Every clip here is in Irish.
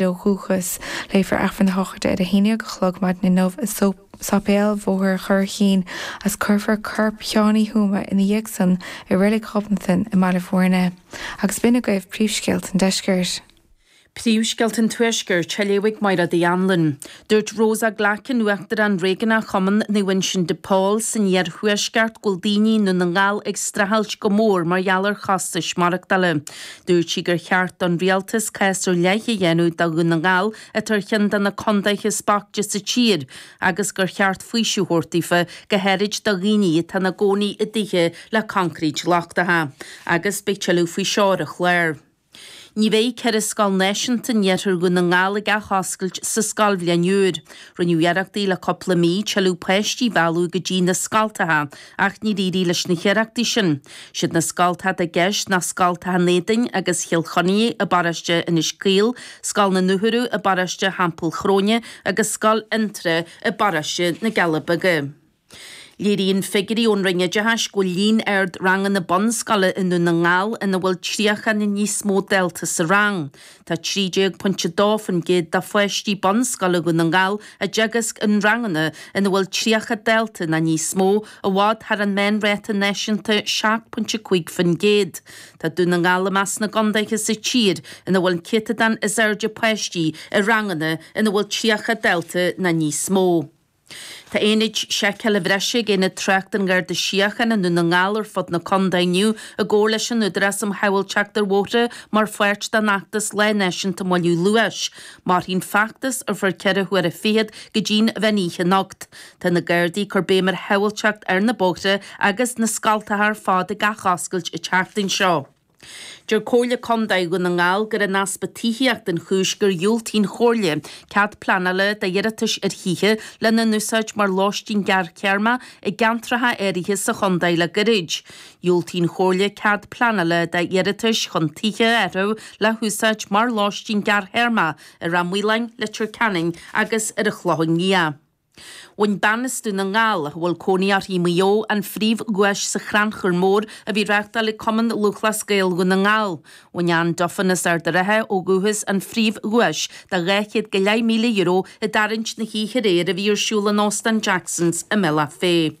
nó dhúchas. Léifear Aifreann a shochraide ar a haon déag a chlog maidin inniu i Sáipéal Bhóthar Churraichín agus cuirfear corp Sheáin Uí Thuama ina dhiaidh san i Reilig Ghobnatan i mBaile Mhúirne. Agus b'in agaibh príomhscéalta an deiscirt. Príomhscéalta an tuaiscirt a léifidh Máire Dhanlann. Dúirt Rosa Glackin, Uachtarán Réigiúnach Chumann Naomh Uinseann de Pól san iarthuaisceart go bhfuil daoine i nDún na nGall ag streachailt go mór mar gheall ar chostais maireachtála. Dúirt sí gur cheart don Rialtas cás ar leith a dhéanamh do Dhún na nGall atá ar cheann de na contaetha is boichte sa tír agus gur cheart faoiseamh a thabhairt daofa go háirid do dhaoine atá ina gcónaí i dtithe le coincréit lochtacha agus beidh tuilleadh faoi seo ar an chlár. Ní bheidh ceithre scoil náisiúnta in iarthar Dhún na nGall ag athoscailt sa scoilbhliain úr. Rinneadh iarrachtaí le cúpla mí tuilleadh páistí a mhealladh go dtí na scoltacha ach níor éirigh leis na hiarrachtaí sin. Siad na scoltacha atá i gceist ná scoltacha an Éadain agus Chill Chainnigh i bparóiste Inis Caoil, scoil na nAcraí i bparóiste Theampall Chróine agus scoil Fhionntrá i bparóiste na gCealla Beaga. Léiríonn figiúirí ón Roinn Oideachais go bhfuil líon ard ranganna bunscoile i nDún na nGall ina bhfuil 30 nó níos mó dalta sa rang. Tá 13.2% de pháistí bunscoile Dhún na nGall á dteagasc i ranganna ina bhfuil 30 dalta nó níos mó, i bhfad thar an meánráta náisiúnta 7.5%. Tá Dún na nGall i measc na gcontaetha sa tír ina bhfuil an céatadán is airde páistí i ranganna ina bhfuil 30 dalta nó níos mó. Tá aonaid seiceála bhreise ag Aonad Tráchta an Gharda Síochána Dhún na nGall ar fud na contae inniu i gcomhar leis an Údarás um Shábháilteacht ar Bhóithre mar pháirt den fheachtas Lá Náisiúnta Moilliú Luais. Mairfidh an feachtas ar feadh ceithre huaire fichead go dtí'n mheán oíche anocht. Tá na Gardaí ag cur béim ar shábháilteacht ar na bóithre agus na scoltacha ar fad ag athoscailt an tseachtain seo. Deir Comhairle Contae Dhún na nGall gur é an easpa tithíochta an chúis gur dhiúltaigh an Chomhairle cead pleanála d'iarratais ar thithe lena n-úsáid mar lóistín gearrthéarma i gceantracha áirithe sa chontae le gairid. Dhiúltaigh an Chomhairle cead pleanála d'iarratais chun tithe a athrú le húsáid mar lóistín gearrthéarma i Ráth Maoláin, Leitir Ceanainn agus ar an Chlochán Liath. Bhain bean as Dún na nGall, a bhfuil cónaí uirthi i Maigh Eo, an phríomhdhuais sa Chrannchur Mór a bhí á reáchtáil ag Cumann Lúthchleas Gael Dhún na nGall. Bhain Anne Duffin as Ard a' Rátha ó dhúchas an phríomhdhuais de dhá chéad go leith míle euro i dtarraingt na hoíche aréir a bhí ar siúl in Óstán Jackson's i mBealach Féich.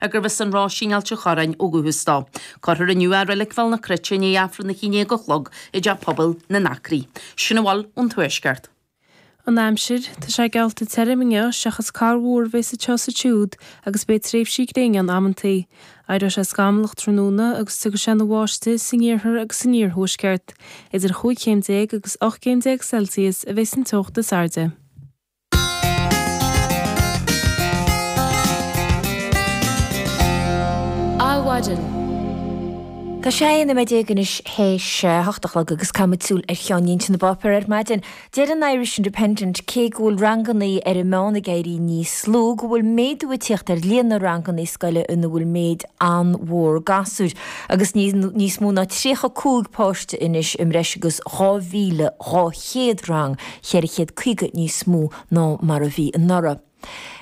ag gurbh as an Roisín in Ailt an Chorráin ó dhúchas dó. Cuirfear inniu é i Reilig Bhéal na Cruite i ndiaidh Aifreann a haon déag a chlog i dTeach Pobail na nAcraí. Sin a bhfuil ón Tuaisceart. An Aimsir, Tá sé geallta tirim inniu seachas corrmhúr a bheas anseo is ansiúd agus beidh tréimhsí gréine ann amantaí. Éireoidh sé scamallach tráthnóna agus tiocfaidh sé ina bháistigh san iarthar agus san iarthuaisceart. Idir chúig chéim déag agus ocht gcéim déag Celsius a bheas an teocht is airde. Adhmhaidin. Tá sé a haon nóiméad déag anois théis a hocht a chlog agus caithfidh muid súil ar cheannlínte na bpáipéar ar maidin. Deir an Irish Independent cé go bhfuil rangannaí ar an meán ag éirí níos lú go bhfuil méadú ag tíocht ar líon na rangannaí scoile ina bhfuil méid an-mhór gasúr agus níos mó ná tríocha a cúig páiste anois i mbreis agus dhá mhíle dhá chéad rang 450 níos mó ná mar a bhí anuraidh.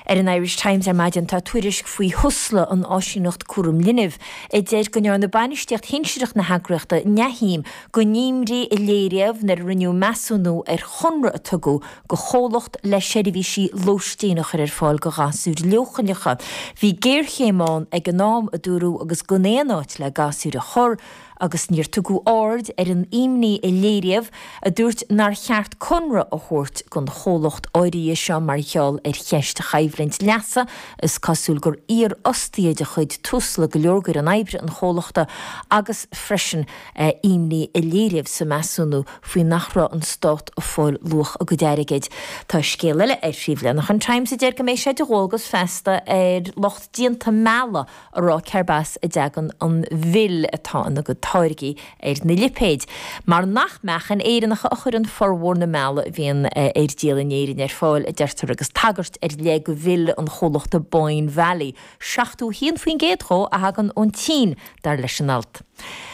Ar an Irish Times ar maidin tá tuairisc faoi Thusla, an áisíneacht cúraim linbh, a deir go ndearna bainistíocht shinsearach na heagraíochta neamhshuim den imní a léiríodh nuair a rinneadh measúnú ar chonradh a tugadh do chomhlacht le seirbhísí lóistín a chur ar fáil do ghasúir leochaileacha. Bhí géarchéim ann ag an am, a dúradh, agus gan aon áit le gasúir a chur. agus níor tugadh aird ar an imní a léiríodh a dúirt nár cheart conradh a thabhairt don chomhlacht áirithe seo mar gheall ar cheist choimhlint leasa, is cosúil gur iarfhostaithe de chuid Tusla go leor d'fhoireann oibre an chomhlachta agus freisin imní a léiríodh sa measúnú faoi nach raibh an stát ag fáil luach a gcuid airgid. Tá scéal eile ar phríomhleathanach an Times a deir go mbeidh sé de dhualgas feasta ar lucht déanta meala, a rá cérb as a dtagann an mhil atá ina gcuid táirgí ar na lipéid, mar nach meachain Éireannacha a chuireann formhór na meala a bhíonn ar díol in Éirinn ar fáil, a deirtear agus tagairt ar leith do mhil an chomhlachta Boyne Valley, 71% dhó a thagann ón tSín, dar leis an alt.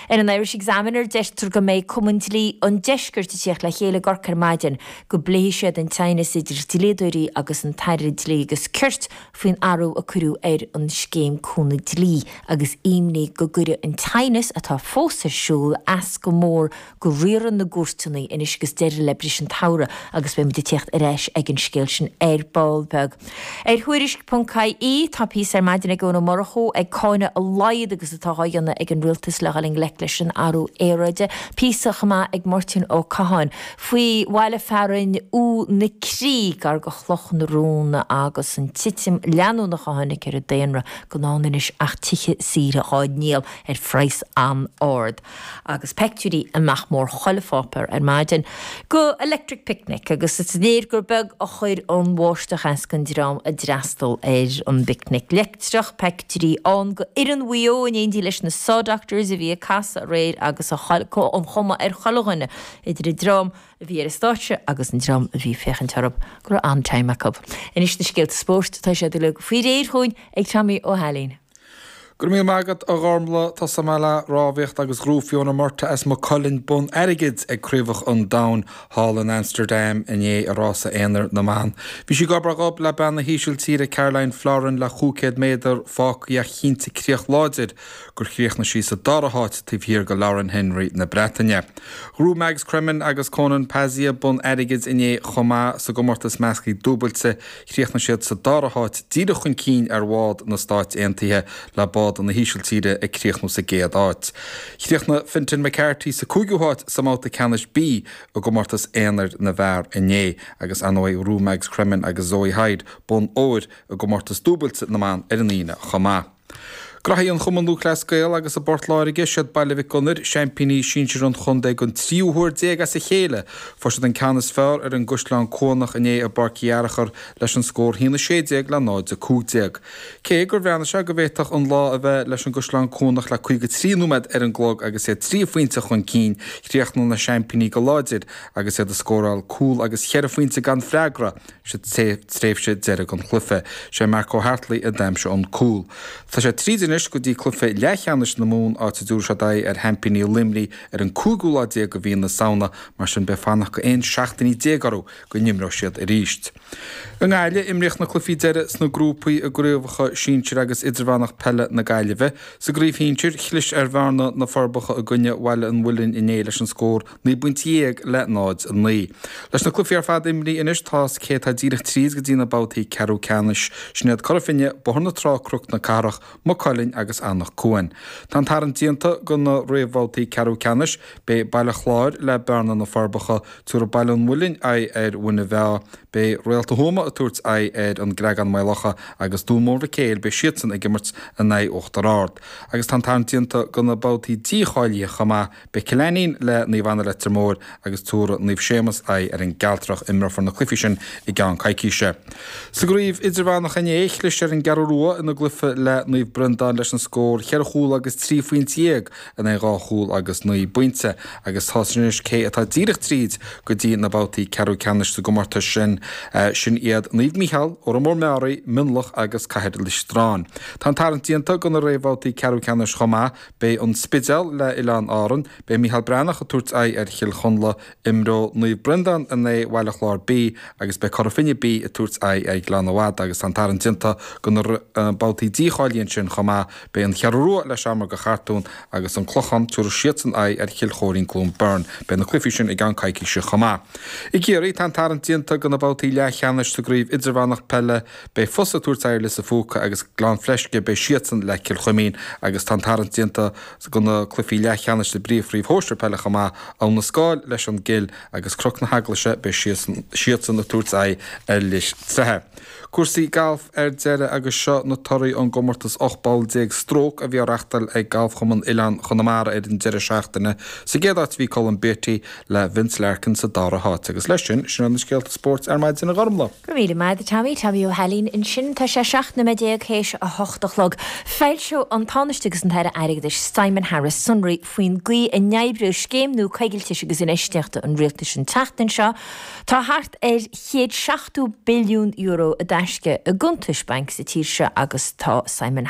Ar an Irish Examiner, deirtear go mbeidh Cumann Dlí an Deiscirt ag tíocht le chéile i gCorcaigh ar maidin, go bpléifidh siad an t-aighneas idir dlíodóirí agus an tAire Dlí agus Cirt, faoin athrú a cuireadh ar an scéim cúnamh dlí agus imní go gcuirfidh an t-aighneas atá fós ar siúl as go mór do riaradh na gcúirteanna anois agus deireadh le briseadh an tsamhraidh agus beidh muid ag tíocht ar ais ag an scéal sin ar ball beag. Ar Thuairisc ponc ie tá píosa ar maidin ag Eoin Ó Murchú ag cáineadh a laghad agus atá dhá dhéanamh ag an rialtas le dhul i ngleic leis an athrú aeráide, píosa chomh maith ag Máirtín Ó Catháin faoi bhaile fearainn U na Crí gar go Chloch na Rón agus an titim leanúnach a tháinig ar an daonra gan ann anois ach tithe saoire dhá ndíol ar phraghas an-ard agus peictiúirí i nach mór chuile pháipéar ar maidin go Electric Picnic agus is léir gur beag a chuir an bháisteach as don dream a d'fhreastal ar an bPicnic Leictreach, peictiúirí ann go fhoireann Mhaigh Eo in éindí leis na Saw Doctors a bhí ag casadh aréir agus an chuma ar chuile dhuine idir an dream a bhí ar an stáitse agus an dream a bhí ag féachaint orthu, go raibh an-time acu. Anois na scéalta spóirt, tá siad uilig faoi réir chugainn ag Tommy Ó hAilín. Go raibh míle maith agat, a Ghormlaith. Tosóidh muid le rámhaíocht agus ghnóthaigh Fiona Murtagh as Maigh Cuilinn bonn airgid ag Craobhacha an Domhain thall in Amsterdam inné i rása aonair na mban. Bhí sí gob ar ghob le bean na hÍsiltíre, Karolien Florijn, le chúig chéad méadar fágtha ach chinntigh críoch láidir gur chríochnaigh sí sa dara háit taobh thiar de Lauren Henry na Breataine. Ghnóthaigh Mags Cremen agus Konan Pazzaia bonn airgid inné chomh maith sa gcomórtas measctha dúbailte, chríochnaigh siad sa dara háit díreach chun cinn ar bhád na Stáit Aontaithe le bád na hÍsiltíre ag críochnú sa gcéad áit. Chríochnaigh Fintan McCarthy sa cúigiú háit sa mbabhta ceannais B i gcomórtas aonair na bhfear inné agus ar ndóigh ghnóthaigh Mags Cremen agus Zoe Hyde bonn óir i gcomórtas dúbailte na mban ar an Aoine chomh maith. Cluichí an Chumann Lúthchleas Gael agus i bPort Láirge, siad Baile Mhic Gonair, seaimpíní sinsir an chontae don tríú huair déag as a chéile. Fuair siad an ceann is fearr ar an gCaisleán Cuanach inné i bPáirc Uí Fhearachair leis an scór haon a sé déag le náid a cúig déag. Cé gur bhreathnaigh sé go bhféadfadh an lá a bheith leis an gCaisleán Cuanach le caoga trí nóiméad ar an gclog agus iad trí phointe chun cinn, chríochnaigh na seaimpíní go láidir agus iad ag scóráil cúl agus cheithre phointe gan freagra. sa tréimhse deiridh den chluiche. Sé Mark Hartley a d'aimsigh an cúl. Tá siad tríd anois go dtí cluiche leathcheannais na Mumhan áit a dtabharfaidh siad aghaidh ar sheaimpíní Luimnigh ar an 5ú lá déag de mhí na Samhna mar sin beidh fanacht go 11 seachtainí orthu go n-imreoidh siad arís. I nGaillimh, imríodh na cluichí deiridh sna grúpaí i gcraobhacha sinsir agus idirmheánach peile na Gaillimhe. Sa gcraobh shinsir, chlis ar Bhearna, Na Forbacha i gcoinne Bhaile an Mhuilinn inné leis an scór Naoi bpointe dhéag le 0, 9. Leis na cluichí ar fad imrithe anois tá a fhios cé atá díreach tríd go dtí na babhtaí ceathrú ceannais, sin iad Cora Finne, Bóthar na Trá, Cnoc na Cathrach, Maigh Cuilinn agus Eanach Cuain. Tá an tarraingt déanta go na réamhbhabhtaí ceathrú ceannais, beidh Baile Chláir le Bearna, Na Forbacha, tabharfaidh Baile an Mhuilinn aghaidh ar Mhuine Mheá, beidh Réalta Thuama ag tabhairt aghaidh ar An gCreagán-Maigh Locha agus Dún Mór Mhic Éil, beidh siadsan ag imirt in aghaidh Uachtar Ard. Agus tá an tarraingt déanta go na babhtaí dícháilithe chomh maith, Beidh Cill Ainnín le Naomh Anna Leitir Móir agus tabharfaidh Naomh Séamus aghaidh ar an gCealtrach. Imreofar na cluichí sin i gceann coicíse. Sa gCraobh Idirmheánach inné, chlis ar an gCeathrú Rua ina gcluiche le Naomh Breandán leis an scór ceithre chúl agus trí phointe dhéag in aghaidh dhá chúl agus naoi bpointe agus tá a fhios anois cé atá díreach tríd go dtí na babhtaí ceathrú ceannais sa gcomórtas sin. Sin iad Naomh Mícheál, Órán Mór Meáraí, Mionlach agus Cathair Loistreáin. Tá an tarraingt déanta do na réamhbhabhtaí ceathrú ceannais chomh maith. Beidh an Spidéal le Oileáin Árann, beidh Mícheál Breathnach ag tabhairt aghaidh ar Chill Chonla, imreoidh Naomh Breandán in aghaidh Bhaile Chláir B agus beidh Cora Finne B ag tabhairt aghaidh ar Ghleann na Madadh agus tá an tarraingt déanta do na babhtaí dícháilithe ansin chomh maith, beidh an Cheathrú Rua le Seamróga Chartúin agus an Clochán, tabharfaidh siadsan aghaidh ar Chill Choirín-Cluain Bheirn, beidh na cluichí sin i gceann coicíse chomh maith. I gCiarraí, tá an tarraingt déanta do na babhtaí leathcheannais sa gCraobh Idirmheánach Peile, Beidh Fosa ag tabhairt aghaidh ar Lios an Phúca agus Gleann Fleisce, beidh siadsan le Cill Chuimín agus tá an tarraingt déanta do na cluichí leathcheannais sa bpríomhchraobh shóisir peile chomh maith, Abha na Scáil leis an gCill agus Cnoc na hEaglaise, beidh siadsan ag tabhairt aghaidh ar Lios Treighe. Cúrsaí gailf ar deireadh agus seo na torthaí ón gcomórtas 18 bpoll stróc a bhí á reachtáil ag Galfchumann Oileáin Chonamara ar an deireadh seachtaine. Sa gcéad áit bhí Colm Beatty le Vince Larkin sa dara háit. Agus leis sin, sin iad na scéalta spóirt ar maidin a Ghormlaith. Go raibh míle maith agat a Tommy, Tommy Ó hAilín ansin. Tá sé seacht nóiméad déag théis a hocht a chlog. Foilseoidh an Tánaiste agus an tAire Airgeadais, Simon Harris sonraí faoin gcaoi a n-oibreoidh scéim nua coigiltis agus infheistíochta an Rialtais an tseachtain seo. Tá thart ar chéad seachtó billiún euro i dtaisce i gcuntais bainc sa tír seo agus tá Simon.